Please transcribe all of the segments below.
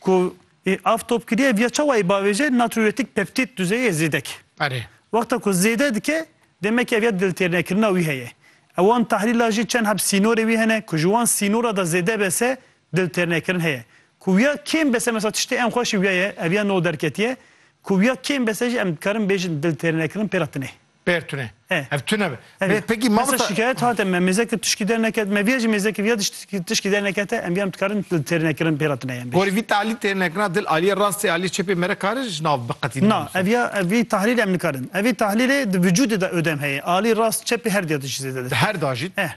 Ku ê av top kiriye viya çawa ê bavêje natriuretik peptîd duzeyê zêdek. Erê. Wexta ku zêde dike demekî ev ya diltêrnekirina wî heye. Ewan tahlîla jî çend heb sînorê wî hene ku ji wan sînora de zêde bese diltêrnekirin heye. Ku wiya kêm bese mesela tiştê en xweş ê wiya ye ev ya no derketiye. Ku wiya kêm bese jî em dikarin bêjin diltêrnekirin pê re tune. Pêr tune. Eh. Ev tune be. Hevî. Bê pekî Hesa mamota. şikayet hate me mêzeke tişkî derneket me viya jî mêzeke viya tişkî tişkî dernekete em viyan dikarin dil têr nekirin pêra tune yên bê. Gorî vî talî têr nekirina dil aliyê rastê aliyê çepê mere karin ji nav biqetînin Na binivîsin. ev ya ev vî tahlîlê em nikarin. Ev vî tahlîlê di vücudê de ödem heye. Alî rast çepê her diya tişkî zêde Di destpê. her da jî Eh.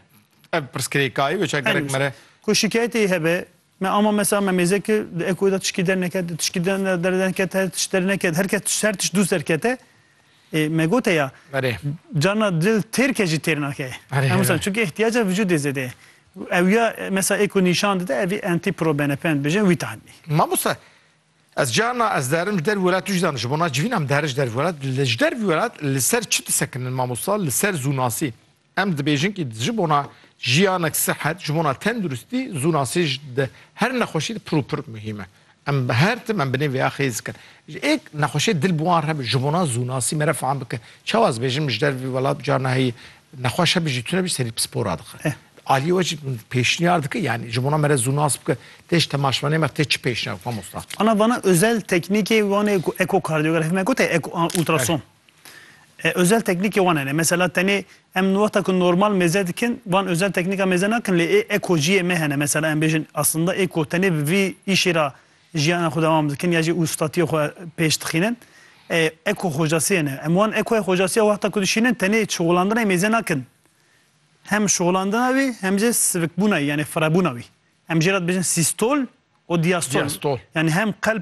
ev pirsgirêk a ye wê çar gerek Elbîst. mere. Ku şikayetê hebe Me ama mesela me mêze kir di ekoyê de tişkî derneket, di tişkî derneket her tişt derneket, her kes tişt her tişt dûst derkete. Ê me gote ya Berê. carna dil têrke jî têr nake. Berê, Em wisa berê. çünkü ihtiyaca vücudê zêde ye. Ew ya mesela eko nîşan dide evî entî pro benepend bijin wî tanî. Mamoste ez carna ez derim ji dervî welat tu jî zanî ji bona civîna em derin ji dervî welat li ji dervî welat li ser çi disekinin mamosta li ser zûnasî Em dibêjin kî ji bona jiyanek sihet, ji bona tenduristî zû nasê ji di her nexweşî di pir û pir muhîm e. Em bi her tim em bi nê vêya xêz dikin. Ji êk nexweşê dil bi wan re bi ji bona zûnasî mere fam bike. Çawa ez bêjim ji der vî welat carna heyî nexweş hebe jî tune bî serî pispora dixe. Aliyê we jî pêşniyar dike yanî ji bona mere zûnas bike tê ji temaşvanê me tê çi pêşniyar bike mamosta? Ana vana özel teknîkê wanê ku ekokardiyografî me gote eko ultrason. Özel teknîkê wan hene. Mesela tenê em li wexta ku normal mêze dikin wan özel teknîka mêze nakin lê ê eko jiyê me hene. Mesela em bêjin aslında eko tenê bi vî îşê re jiyana xwe dewam dikin ya jî ustatiyê xwe pêş dixînin. Eko xocasî hene. Em wan ekoya xocasiya wexta ku dişînin tenê şixulandinayê mêze nakin. Hem şixulandina wî hem jî sivikbûnayê yanê firebûna wî. Em jê re dibêjin sîstol û diyastol. Diyastol. Yanê hem qelb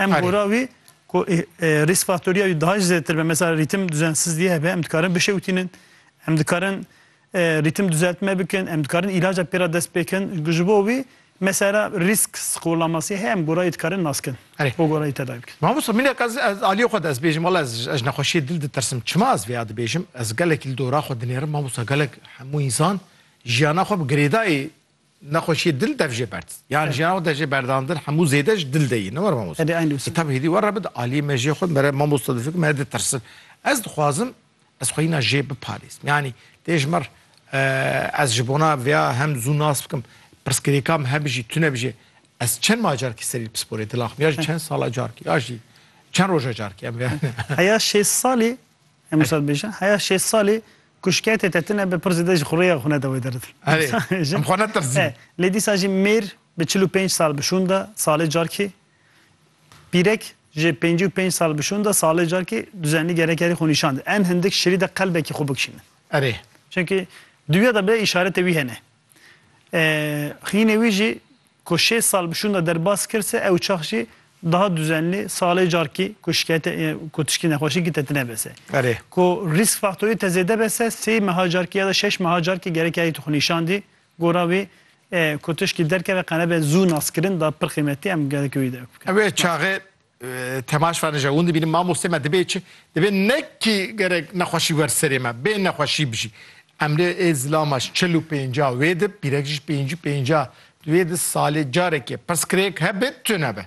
Em Erê. gora wî ku ê, e, risk faktoriya wî daha jî zêdetir be. Mesela rîtim duzensizliyê hebe, em dikarin bişewtînin, em dikarin e, rîtim duzeltme bikin, em dikarin îlaca pê re dest pêkin. Ji bo wî mesela risk skolamasyê heye em gora wî dikarin naskin. Erê. Bo gora wî tedawî bikin. Mamosta minek ez ez aliyê xwe de ez bêjim wela ez ez ji nexweşiyê dil ditirsim. Çima ez vê ya dibêjim? Ez gelekî li dora xwe dinêrim mamosta gelek hemû însan jiyana xwe bi girêdayî Nexweşiyê dil dev jê berd. Yan jî yan de jê berdandin hemû zêde ji dil de yî. Ne were mamosta. Hedi aynı usul. Tabi hêdî were bid aliyê me jê xwe mere mamosta difikim me ditirsin. Ez dixwazim ez xwe yîna jê biparêzim. Yanî tê ji mir ez ji bona vêya hem zû nas bikim pirsgirêka min hebijî tune bijî ez çend ma carkî serî pisporê dila xwe ya jî çend sala carkî ya jî çend roja carkî em vêya. Heya şêst salî Hemû sal bêjin. Heya şêst salî ku şikayetê te tune be pir zêde ji xurêya xwe neda wê derdin. Herê, em xwe netirsîn. Lê dîsa jî mêr bi çil û pênc sal bi şûn de salê carkê, pîrek ji pêncî û pênc sal bi şûn de salê carkê duzenlî gerek erê xwe nîşan de. Em hindik şirî de qelbekî xwe bikişînin. Erê. Çimkî duya de bê îşaretê wî hene. Xînê wî jî ku şêst sal bi şûnda derbas kir se ew çax jî daha duzenlî salê carkî ku şikayete ku tişkî nexweşî ki te tine be se. Erê. Ku rîsk faktorî te zêde be se sey meha carkî ya da şeş meha carkî gerek ya yê tu xwe nîşandî gora wî ku tişkî derkeve qene be zû naskirin da pir qîmetî em gelekî wî de. Wê çaxê Temaş fane jewin dibînim mamostê me dibê çi dibê nekî gerek nexweşî wer serê me bê nexweşî bijî. Emre ê zilamaş çil û pênca wê di pîrek jî pêncî pênca di wê di salê carekê pirs kirêk hebe tune be.